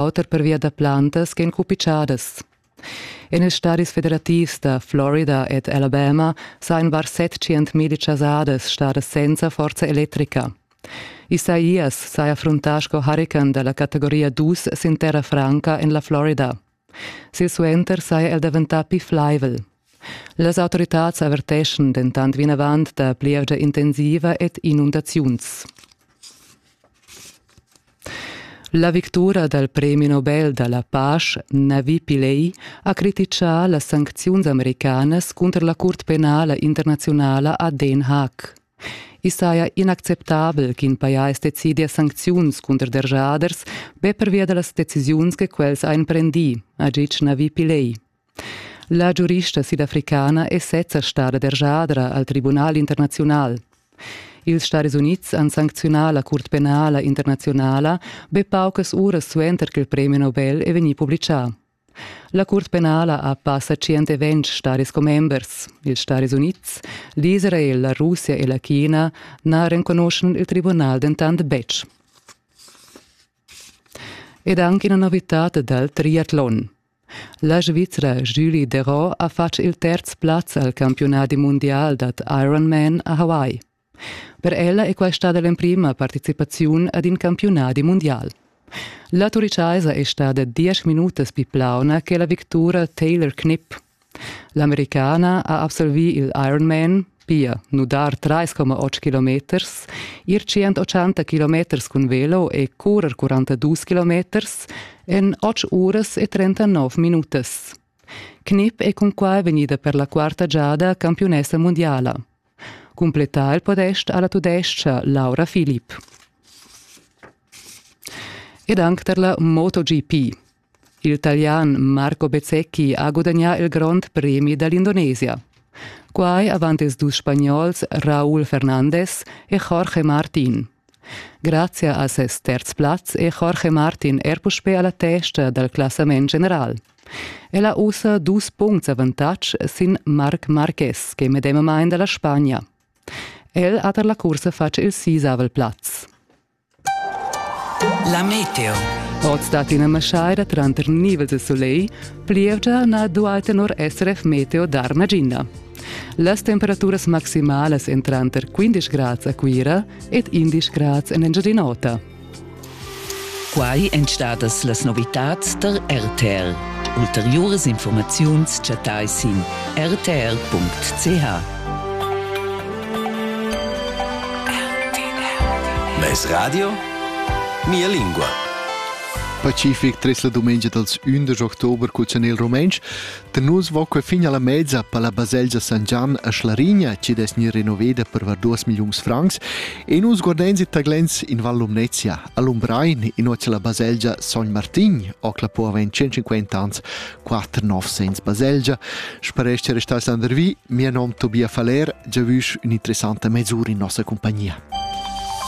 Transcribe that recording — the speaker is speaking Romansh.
auter pervia da plantas ch'en cupitschadas. En ils stadis federativs da Florida ed Alabama sajan var 700.000 chasadas stadas senza forza electrica. Isaías saja fruntà sco hurican da la categoria 2 sin terra franca en la Florida. Silsuenter saja el daventà pli flaivel. Las autoritads averteschan dentant vinavant da plievgia intensiva ed inundaziuns. La victura dal premi Nobel da la pasch Navi Pillay ha crititgà las sancziuns americanas cunter la curt penala internaziunala a Den Haag. I saja inacceptabel ch'in pajais decidia sancziuns cunter derschaders be pervia da las decisiuns che quels han prendì, ha ditg Navi Pillay. La giurista sidafricana è sezza stada derschadra al tribunal internaziunal. Ils Stadis Unids han sancziunà la curt penala internaziunala be paucas uras suenter ch'il premi Nobel è vegnì publitgà. La curt penala ha passa 120 stadis commembers. Ils Stadis Unids, l'Israel, la Russia e la China na renconuschan il tribunal dentant betg. Ed anche una novità dal triathlon. La Svizra Julie Derot ha fatg il terz plaz al campiunadi mundial dad Ironman a Hawaii. Per ella è quai stada l'emprima participaziun ad in campiunadi mundial. La Turichaisa è stada diesch minutas pli plauna che la victura Taylor Knipp. L'Americana ha absolvì il Ironman, pia nudar 3,8 kilometers, ir 180 kilometers cun velo e currer 42 kilometers en 8 uras e 39 minutas. Knip è cunquai vegnida per la quarta giada campiunessa mundiala. Cumplettà il podest alla tudescha Laura Philipp. Ed anche per la MotoGP. Il talian Marco Bezzecchi ha gudagnà il grond premi da l'Indonesia. Quai avant ils dus spagnols Raúl Fernandez e Jorge Martin. Grazie a ses terz plaz è Jorge Martin er puspè a la testa dal classament general. El ha ussa dus puncts avantatg sin Marc Marquez, che è medemamain da la Spagna. El ha tar la cursa fatg il sisavel plaz. La meteo. Oz dat ina maschaira tranter nivels de soleil, plievgia na duai tenor SRF Meteo dar nagina. Las temperaturas maximalas en tranter 15 grads a Cuira ed 11 grads en Engiadin'Ota. Quai èn stadas las novitads da RTL. Ulteriuras informaziuns chattai sin rtl.ch. Mes radio? Mia lingua. Pacific tres la dumengia dels 11 october cul chanel rumentsch, da nus va que fin alla mezza per la baselgia San Gian a Schlarigna, ci des ni renoveda per var 2 milions francs, e nus guardenzi taglens in Val Lumnezia, a Lumbrein, in oce la baselgia Sogn Martin, ocla po aven 150 ans, quatter nov segns baselgia, sparescha restà sandervi, mia nom Tobia Faller, giavüsch ün'interessanta mesura in nossa compagnia.